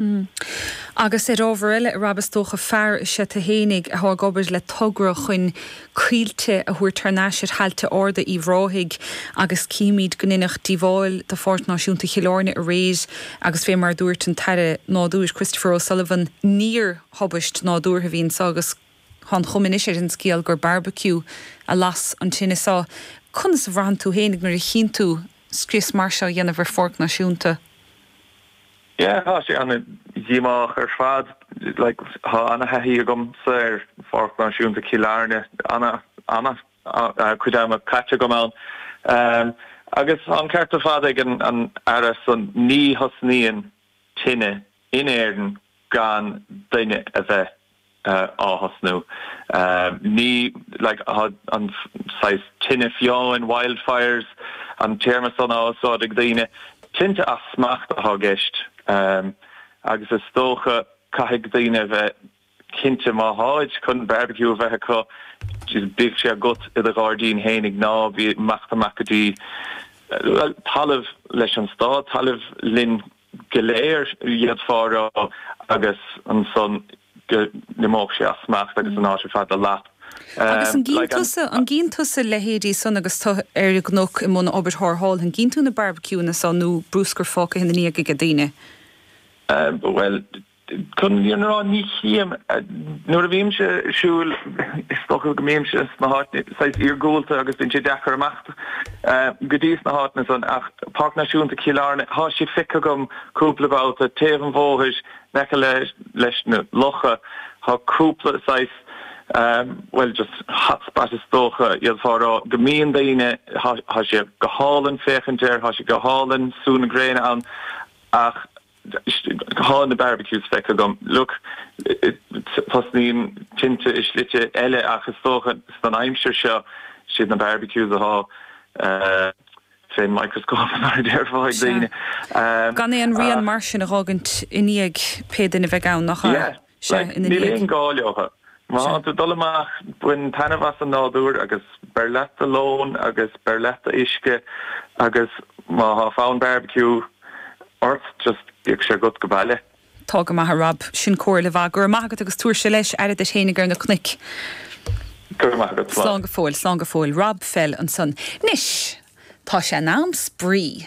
Agus ar ábhar eile a Rob, is dócha, fear is ea tu fhéinig atá ag obair le togra chun coillte a thabhairt thar n-ais ar thailte arda Uíbh Ráthaigh agus címid go ndeineadh díobháil do Pháirc Náisiúnta Chill Airne aréir agus fé mar a dúirt an tAire Nádúir, Christopher O'Sullivan, níor thubaist nádúrtha a bhí anseo agus tá an chuma anois ar an scéal gur barbecue a las an tine seo. Conas a bhraitheann tú fhéinig nuair a chíonn tú scrios mar seo á dhéanamh ar Pháirc Náisiúnta? Yeah, tá sé an-díomách ar fad. Like, tá an-thaithí agamsa ar Pháirc Náisiúnta Chill Airne, an-chuid ama caite agam ann. Agus tá an ceart ar fad ag an Aire, so ní thosnaíonn tine in Éirinn gan duine a bheith á thosnú. Ní like an saghas tine fiáin, wildfires, an téarma san á úsáid ag daoine. Tinte as smacht atá i gceist agus is dócha caithfidh daoine a bheith cinnte má tháid chun barbecue a bheith acu just bíodh sé agat i do ghairdín fhéinig ná bí ag imeacht amach go dtí talamh leis an stát, talamh linn. go léir, d'fhéadfá a rá, agus ansan go n-imeodh sé as smacht agus an áit ar fad a lot. Agus an gcíonn tusa, an gcíonn tusa leithéidí san agus tú ar an gcnoc i mbun obair tharrthála, an gcíonn tú na barbaiciúanna san nó brúscar fágtha ina ndiaidh ag daoine? Bhuel, Chun an fhírinne a rá, ní chím. Nuair a bhímse ag siúl, is dócha go mbímse sna háiteanna saghas iargúlta agus bíonn sé deacair imeacht go dtí na háiteanna san ach Páirc Náisiúnta Chill Airne, tá sé feicthe agam cúpla babhta, taobh an bhóthair in aice leis na locha, tá cúpla saghas, bhuel, just hot spot is dócha, d'fhéadfá a rá, go mbíonn daoine, tá sé go hálainn féachaint air, tá sé go hálainn sú na gréine ann ach, Tá na barbecues feicthe agam. Look, tosnaíonn tinte i slite eile ach is dócha san aimsir seo, siad na barbecues athá fén microscope mar a déarfá ag daoine. Sea. Gan aon rian mar sin a dh'fhágaint i ndiaidh pé duine a bheidh ann, nach ea? Yeah. seo ina dhiaidh. Níl aon ghá leotha. Má tá tú ag dul amach, bain taitneamh as an nádúr agus beir leat do lón agus beir leat do uisce agus má tá fonn barbecue ort, just bíodh sé agat aige baile. Tá go maith a Rob. Sin comhairle mhaith. Go raibh maith agat agus tabhairse leis, aire duit fhéinig ar na cnoic. Go raibh maith agat. Slán. Slán go fóill. Slán go fóill. Rob Fell ansan. Anois, tá sé in am spraoi.